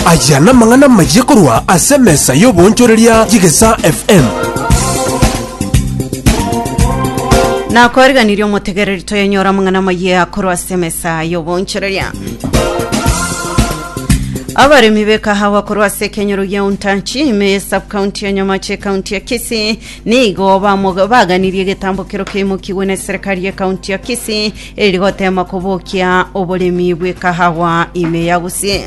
Aya namang'ana amayia korwa ase emesa y'oboonchoreria y'Egesaa FM. Nakoriganirie omotegereri toyenyore amang'ana amayia korwa ase emesa y'oboonchoreria. Abaremi b'ekahawa korwa ase ekenyoro gia Untanchi ime ye subcounty ya Nyamache ekaunti ya Kisii nigo bamoga- baganirie egetambokero keimokigwe na eserekari y'ekaunti ya Kisii Erigoteema kobokia oboremi bw'ekahawa ime ya Gusii.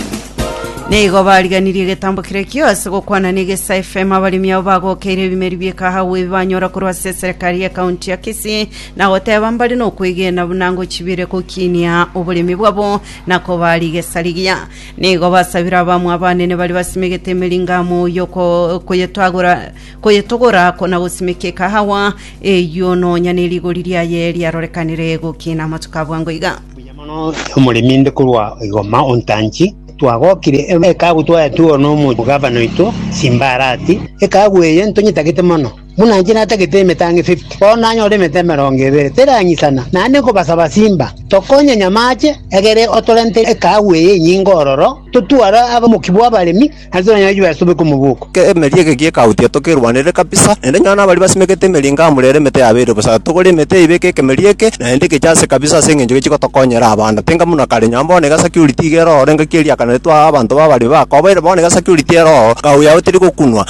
Nigo bariganirie egetambo keria kiose gokwana n'egesa FM abaremi abo bagokeire ebimeri bi'ekahawa ebi banyora korwa ase eserekari y'ekaunti ya Kisii na goteba mbare nokwegena buna ngochibire gokinia oboremi bwabo na koba rigesa rigiya. Nigo basabire abamwa abanene baria basimegete emeringamo y'okoyetwagora Koyetogora ko na gosimeka ekahawa eyio nonya ne rigori riaye riarorekanire gokina amatuko a bwango iga. Mbuya mono omoremi inde korwa igoma ontanchi. Twagokire ekagu twaetuo nomochi gavana oito Simbarati. Ekagu eye ntonyetagete mono. Buna inche natagete emetang'e 50, bono nanyore emete emerongo ebere terang'isana. Naende nkobasaba Simba, tokonye nyamache, egere otorente ekagu eye enyinge ororo, totware aba omokia bw'abaremi, ase abanyanegichwa baye asobe komogoka. Ekeemeri eke gi'ekaautia tokerwanere kabisa, naende nyora nabaria basimekete emeri inga amure ere emete yabeire bosa. Togore emete eye ibeke ekemeri eke, naende geche ase kabisa ase engencho gechi gotokonyera abana. Tenga buna kare, nyora bono iga security iga eroo ore ngaki eriakana ritwe aa abanto babare bakobaire bono iga security eroo kaau yao teri gokunwa.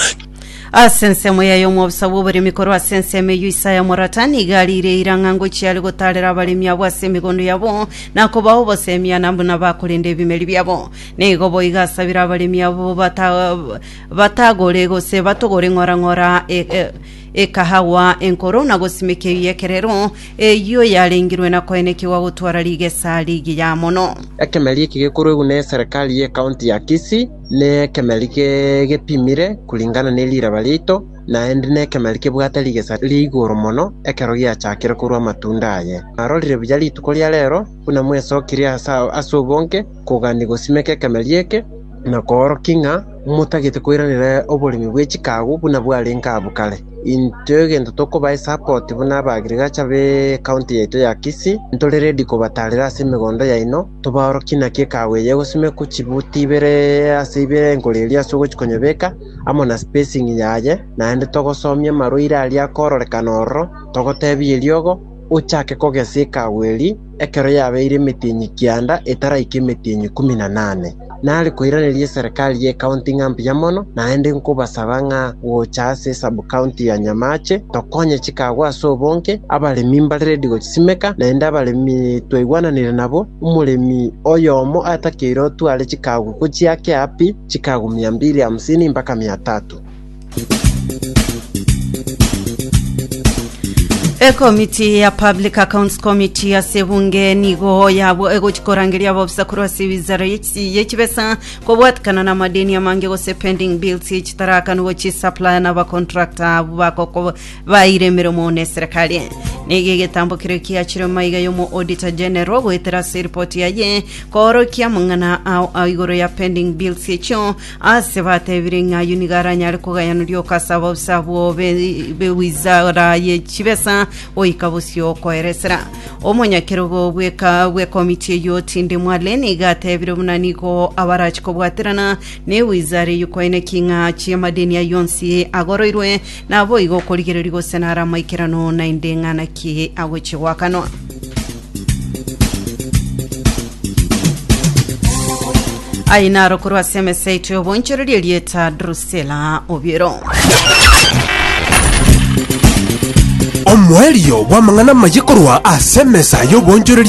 Ase ensemo yaye omobisa bw'oboremi korwa ase ensemo eyio Isaya omorata nigo ariireire ng'a ngochia are gotaarera abaremi abwo ase emegondo yabo, na kobao obosemi ana buna bakorenda ebimeri biabo. Nigo boigo asabire abaremi abwo bata- batagore gose batogore ng'orang'ora e- e- ekahawa enkoro na gosimikia ebiyekerero eyio yarengirwe na koenekigwa gotwara rigesa rigiya mono. Ekemeri eki gekoruegwe ne Serikali ye County ya Kisii ne ekemeri ge- gepimire kulingana ne riraba riaito, naende ne ekemeri kebwate rigesa ria igoro mono ekero giachakire korua amatunda aye. Narorire buya rituko ria rero buna mwesokirie ase ase obonge, kogania gosimeka ekemeria eke, na koorokia ng'a motagete koiranera oboremi bwe chikaagu buna bwarenge abwo kare. Intwe egento tokoba esupport buna aba agriculture be county yaito ya Kisii, ntore ready kobataarera ase emegondo yaino, tobaorokie naki ekaagu eye egosimekwa chibuti ibere ase ibere enkoro eria ase ogochia konyebeka, amo na spacing yaye, naende togosomia amarwaire aria akororekana ororo, togoteebia eriogo, ochake kogesa ekaagu eria, Ekero yabeire emetienyi kianda etaraika emetienyi ikomi na nane, nare koiraneria eserekari y'ekaunti ng'a mbuya mono, naende nkobasaba ng'a gocha ase esabkaunti ya Nyamache tokonye chikago ase obonge, abaremi mbare redi gochisimeka, naende abaremi twaigwananire nabo, omoremi oyomo atakeire otware chikago gochia ake api chikago mia mbili hamsini mpaka mia tatu. Ekomiti ya Public Accounts Committee ase ebunge nigo yabo egochi korangeria ababisa korwa ase ewizara y'echi- y'echibesa kobwatikana na amadeni amange gose pending bills echitarakanu gochi supplier na abacontractor abwo bagoko baire emeremo na eserekari nigo egetambo keria kiachire maiga y'omo auditor general goetera ase eripoti yaye koorokia amang'ana ao ao igoro ya pending bills echio Aase bateebire ng'a ayio nigo aranyare kogayanoria ogasaba usa abwo be b'ewizara ye chibesa goika bosio okoeresera. Omonyakerogo bw'eka bw'ekomiti eyio Tinde Mwale nigo ateebire buna nigo abarachi kobwaterana n'ewizara eyio koeneki ng'a achie amadeni ayio onsi agoroirwe Naboigo okorigereria gose nare amaikerano, naende ng'ana ki agochie goakanwa. Aye naro korwa ase emesa yaito y'obonchoreria erieta Drusela Obiero. Omoerio bw'amang'ana amaye korwa ase emesa y'obonchoreria